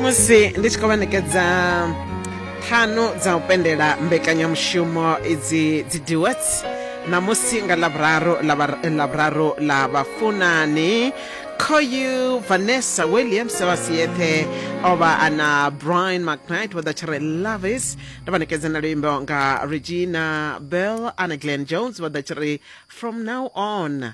musi ndi tshi khou vha ṋekedza ṱhanu dza u pendela mbekanyamushumo idzi dzi duets ṋamusi nga ḽavhuraru ḽavhuraru ḽa vhafunani khoyu vanessa williams wa siyeṱhe o vha a na brian mcnight wa ḓa tshi re lovis ndo vha ṋekedza na luimbo nga regina bell ana glen jones vha ḓa tshi re from now on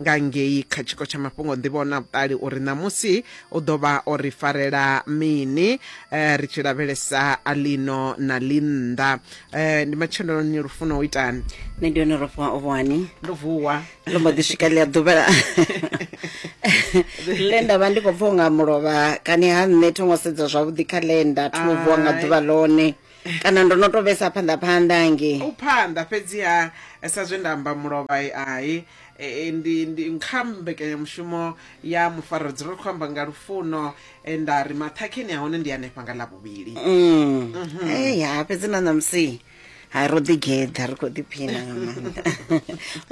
nga ngei kha tshiko tsha mafhungo nḓivho na vhuṱali uri ṋamusi u ḓo vha o ri farela mini um ri tshi lavhelesa a ḽino na ḽinnḓa um ndi matsheloni lufuno u itani nṋe ndi hone rofhiwa o vhani ndo vuwa ndo mbo ḓi swika ḽi a ḓuvha ḽe nda vha ndi khou pfha unga mulovha kani ha nṋe thongo sedza zwavhuḓi kha ḽenda thi u vuwa nga ḓuvha ḽone kana ndo no to vhesa phanḓa phanḓa hangei u phanḓa fhedziha eh, sa zwe nda amba mulovha eh, hai eh, eh, ndi ndi kha mbekanyamushumo ya mufaradzwi ro khou amba nga lufuno eh, nda ri maṱhakheni a hone ndi hanefha nga ḽa vhuvhili Mm. Hey, ha fhedzi na ṋamusi ha ro ḓigeḓa ri khou ḓiphina nga maanḓa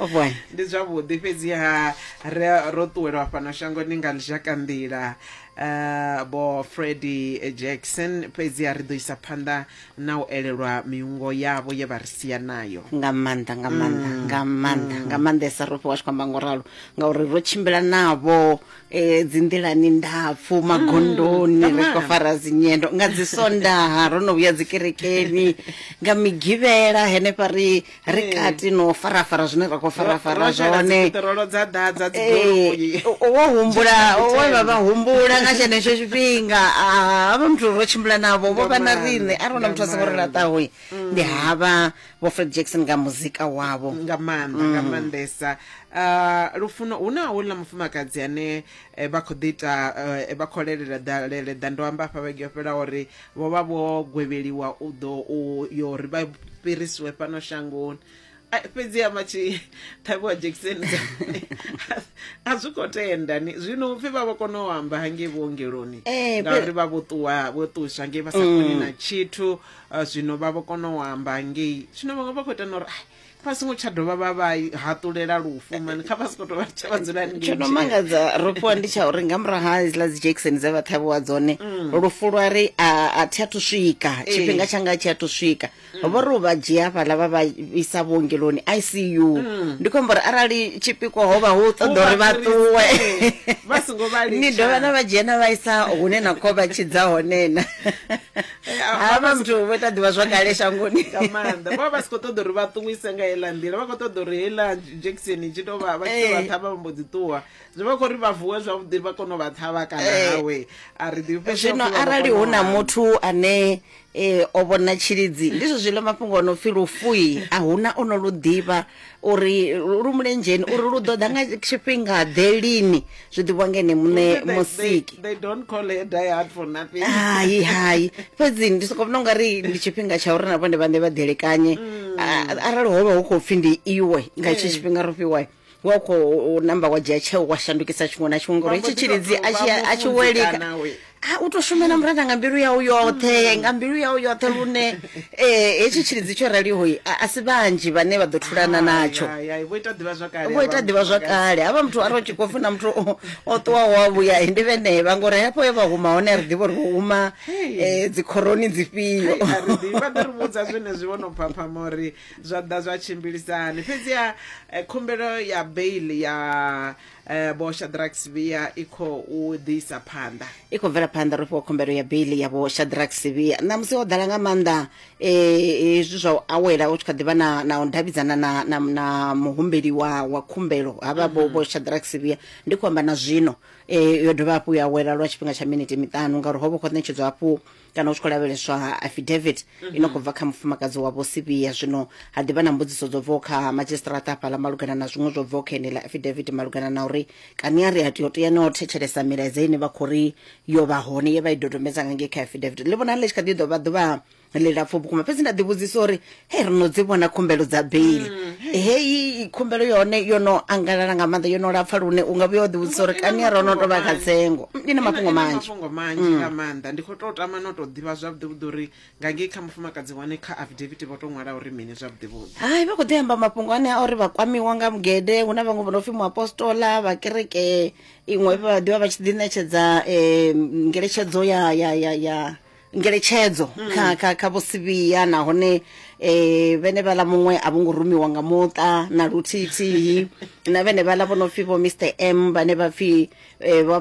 o bwana ndi zwavhuḓi fhedziha ri- ro ṱuwelwa fhano shangoni nga lizhakanḓila Uh, vho freddy jackson fhedzi a ri ḓo isa phanḓa na u elelwa miungo yavho ye vha ri sia nayo nga maanḓa nga maanḓa mm. nga maanḓa mm. nga maanḓesa ro fhiwa tshi khou amba ngo ralo ngauri ro tshimbila navho um e, dzinḓilani ndapfu mm. magondoni mm. ri khou fara dzinyendo nga dzi sondaha ro no vhuya dzikerekeni nga migivhela henefha ri ri eh. kati no farafara zwine ra khou farafara zwone eh, wo humbula we vha vha humbula nga tshenetsho tshifhinga ah, havha muthu ro tshimbula navho vho vha na riṋe a rona muthu a songo ri laṱaho mm. ndi havha vho fred jackson nga muzika wavho nga maanḓa nga mm. maanḓesa ah, lufuno hu na houḽa mufumakadzi ane eh, vha khou ḓi ita vha khou lelela ḓalele ḓa ndo amba afha vhege yo fhela uri vho vha vho gwevheliwa u ḓo u yo ri vha fhirisiwe fhano shangoni fhedzi ya matshi ṱhavhiwa dzhekiseni a zwi khou tenda ni zwino upfhi vha vha kona u amba hangei vhuongeloni eh, ngauri vha vho ṱuwa vho ṱuswa ngei vha sa koni mm. na tshithu ah, zwino vha vho kona u amba hangei zwino vhaṅwe vha khou ita na uri vha songo tsha dovha vha vha haṱulela lufu mani kha vha soko tovha tsha vha dzula tsho no mangadza ro fhiwa ndi tsha uri nga murahu ha iziḽa dzi jackson dze vha ṱhavhiwa dzone mm. lufu lwa ri a thi a thu swika eh. tshifhinga tshanga tshi a thu swika mm. vho ri u vha dzhia fhaḽa vha vha isa vhuongeloni i c u mm. ndi khou amba uri arali tshipikwa ho vha hu ṱoḓa uri vha ṱuwe ni dovha na vha dzhia na vha isa hune na kho vha tshidza honena eh, havha muthu vho ita ḓivha zwakale shangoni nga maanḓa vha vha si khou ṱoḓa uri vha ṱuwise nga heiḽa nḓila vha khou ṱoḓa uri heiḽa jackson i tshi tou vha vha tshi tou vha eh. ṱhavha vha mbo dzi ṱuwa zwi vha khou ri vha vuwe zwavhuḓi vha kone u vha ṱhavha kana eh. hawe a ri ḓifhe zwino arali hu na muthu ane eh o vhona tshilidzi ndi zwo zwiḽa mafhungo ono pfhi lufui a huna ono lu ḓivha uri lu lu mulenzheni uri lu ḓo ḓa nga tshifhinga ḓe lini zwi ḓivhiwa nga ene muṋe They- they- musiki they don't call her die hard for nothing hai hai fhedzi ndi soko vhona ungari ndi tshifhinga tsha uri na vhone vhaṋe vha ḓelekanye A- arali ho vha hu khou pfhi ndi iwe nga hetshi tshifhinga ro fhiwa wa khou namba wa dzhia tsheo wa shandukisa tshiṅwe na tshiṅwe ngori Vha mbo hetshi ḓi tou tshilidzi a tshi- vha a tshi welika mufunzi kana we. a u to shumela murena nga mbilu yau yoṱhe nga mbilu yau yoṱhe lune um hetshi tshilidzi tsho raliho a si vhanzhi vhane vha ḓo thulana natsho vho ita ḓivha zwakale havha muthu a ro tshi khou funa muthu o ṱuwaho wa vhuya ndi vhenevha ngori hafho e vha huma hone a ri ḓivha uri vho huma um dzikhoroni dzifhio vha ḓo ri vhudza zwenezwi vho no phaphama uri zwa ḓa zwa tshimbilisani fhedziha eh, khumbelo ya bail ya eh, vho shadrack sivia i khou ḓisa phanḓa i khou bvela phanḓa ro fhiwa khumbelo ya bili ya vho shadrack sivia ṋamusi ho ḓala nga maanḓa eh, hezwi zwa u awela u tshi kha ḓivha na na u davhidzana na na, na muhumbeli wa wa khumbelo havha vho vho shadrack sivia ndi khou amba na zwino eh, yo dovha hafhu ya awela lwa tshifhinga tsha miniti miṱanu ngauri ho vha khou ṋetshedzwa hafhu kana u tshi khou lavheleswa ha affidavit i no khou bva kha mufumakadzi wa vhosivhiya zwino ha ḓivha na mbudziso dzo bvaho kha madzhisitirata afhaḽa malugana na zwiṅwe zwo bvaho kha ene ḽa affidavit malugana na uri kani a ri a tea u tea no thetshelesa milaedza ine vha khou ri yo vha hone ye vha i dodombedza nga ngei kha affidavit ḽi vhonala ḽi tshi kha ḓi ḓo vha ḓuvha ḽilapfu vhukuma fhedzi nda ḓivhudzisa uri he ri no dzi vhona khumbelo dza beili mm, heyi khumbelo yone yo no angalala nga maanḓa yo no lapfa lune u nga vhuya o ḓivhudzisa uri kani ro no tovha kha tsengo mm, ndi na mafhungo manzhimafhungo manzhi mm. nga maanḓa ndi khou tou tama no tou ḓivha zwavhuḓivhuḓi uri nga ngei kha mufumakadzi wane kha afidaviti vho tou ṅwala uri mini zwavhuḓivhuḓi hai vha khou ḓi amba mafhungo ane a uri vha kwamiwa nga mugede hu na vhaṅwe vho no pfhi muapostola vha kereke iṅwe vha ḓivha vha tshi ḓi ṋetshedza um ngeletshedzo ya ya ya ya ngeletshedzo mm. kha kha kha vho sivhiya nahone eh vhene vhala muṅwe a vhongo rumiwa nga muṱa na luthithi na vhene vhala vho no pfi vho Mr M vhane vha pfi eh vha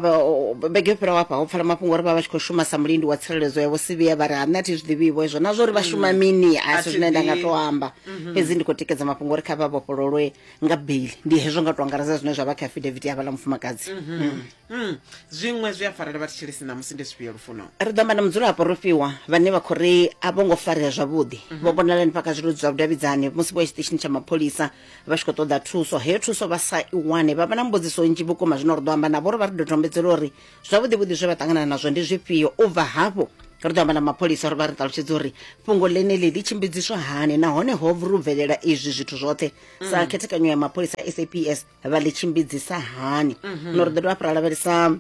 bege fhira wa pa ho pfala mafhungo uri vha vha tshi kho shuma sa mulindi wa tsireledzo ya vho sivhiya vha ri ha nṋe thi zwi ḓivhi vho izwo na zwo ri vha mm. shuma mini a si zwine nda nga to amba mm-hmm. fhedzi ndi kho tikedza mafhungo uri kha vha vhofhololwe nga bail ndi hezwo nga to angaredza zwine zwa vha kha affidavit ya vhala mufumakadzi mm-hmm. mm. Mm, zwiṅwe zwi a farela vha thetshelesi ṋamusi ndi zwifhio lufuno ri ḓo amba na mudzulapo ro fhiwa vhane vha khou ri a vho ngo farea zwavhuḓi vho vhonala ni fhaka zwiludzi zwa vhudavhidzani musi vho ya tshiṱitshini tsha mapholisa vha tshi khou ṱoḓa thuso heyo thuso vha sa i wane vha vha na mbudziso nnzhi vhukuma zwino ri ḓo amba navho uri vha ri dodombedzela uri zwavhuḓi vhuḓi zwe vha ṱangana nazwo ndi zwifhio u bva hafho ri ḓo amba na mapholisa uri vha ri ṱalutshedza uri fhungo ḽeneḽi ḽi tshimbidziswa hani nahone ho ru bvelela izwi zwithu zwoṱhe sa khethekanyo ya mapholisa a saps vha ḽi tshimbidzisa hani zwino ri ḓo dovha hafhu ra lavhelesa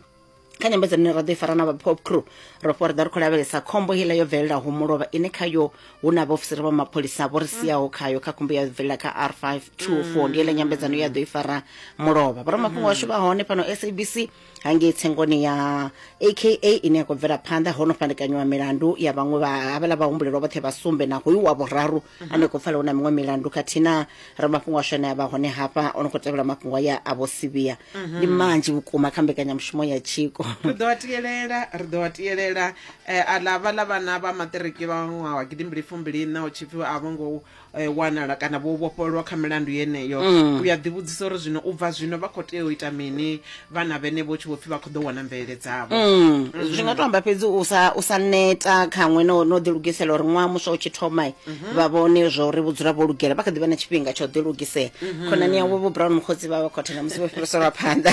kha nyambedzano ine ra ḓo i fara na vha pop crew ro fho ri ḓa ri khou lavhelesa khombo heiḽa yo bvelelaho mulovha ine khayo hu na vhaofisiri vha mapholisa vho ri siaho khayo kha khombo ya bvelela kha r 524 ndi heiḽa nyambedzano ya ḓo i fara mulovha vhoramafhungo washu vha hone fhano sabc hangei tsengoni ya aka ine ya khou bvela phanḓa ho no fhandekanyiwa milandu ya vhaṅwe vha havhala vhahumbulelwa vhoṱhe vha sumbe na hoyu wa vhuraru ane khou pfala hu na miṅwe milandu khathihi na ramafhungo ashu ane a vha hone hafha o no khou tevhela mafhungo aya a vho sivhiya ndi manzhi vhukuma kha mbekanyamushumo ya tshiko ri ḓo a tiyelela ri ḓo a tiyelela um aḽa vhaḽa vhana vha maṱiriki vha ṅwaha wa gidimbili fumbiliṋa hu tshipfi a vho ngo eh, wanala kana vho vhofhololwa kha milandu yeneyo mm. u ya ḓivhudzisa uri zwino u bva zwino vha khou tea u ita mini vhana vhene vho tshi vho pfhi vha khou ḓo wana mvelele dzavho mm. mm. zwi nga to amba fhedzi u sa u sa neta khaṅwe no no ḓilugisela uri ṅwaha muswa u tshi thoma mhm. vha vhone zwa uri vhudzula vho lugela vha kha ḓi vha na tshifhinga tsha u ḓilugisela mhm. khonani yavho vho brown mukhotsi vha vha khothe na musi vho fhiriselwa phanḓa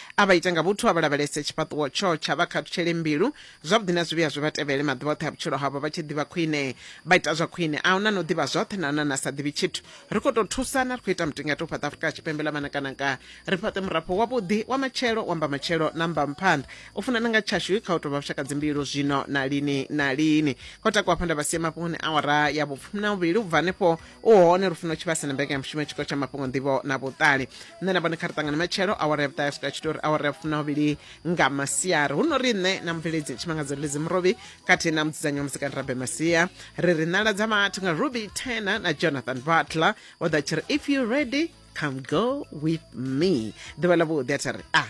A vha ite nga vhuthu, a vha lavhelese tshifhaṱuwo tshotshe, a vha khathutshele mbilu, zwavhuḓi na zwivhi a zwi vha tevhele maḓuvha oṱhe a vhutshilo havho vha tshi ḓivha khwine. Vha ita zwa khwine. A hu na no ḓivha zwoṱhe, na hu na na sa ḓivhi tshithu. Ri khou tou thusana, ri khou ita mutingati u fhaṱa Afrika Tshipembe ḽa manakanaka, ri fhaṱe murafho wavhuḓi, wa matshelo, wa mbamatshelo na mbamuphanḓa. U funana nga tshashu kha u tou vha vhushakadzimbilu zwino na lini na lini. Kho takuwa hafha nda vha sia mafhungoni a awara ya vhufumi-na-vhuvhili u bva hanefho u hone lufuno tshivhase na mbekanyamushumo ya tshikolo tsha mafhungo nḓivho na vhuṱali nṋe na vhone kha ri ṱangane matshelo awara ya vhuṱahe swika tshitori awara ya funa vhili nga masiari hu no ri nṋe na mubveledzi tshimangadzo ledzi murovi khathihi na mudzidzanyi wa muzikani rabe masia ri ri nala dza vhathu nga ruby tena na jonathan butler o ḓa tshi ri if you ready come go with me ḓuvha ḽa vhuḓi a tha ri a ah.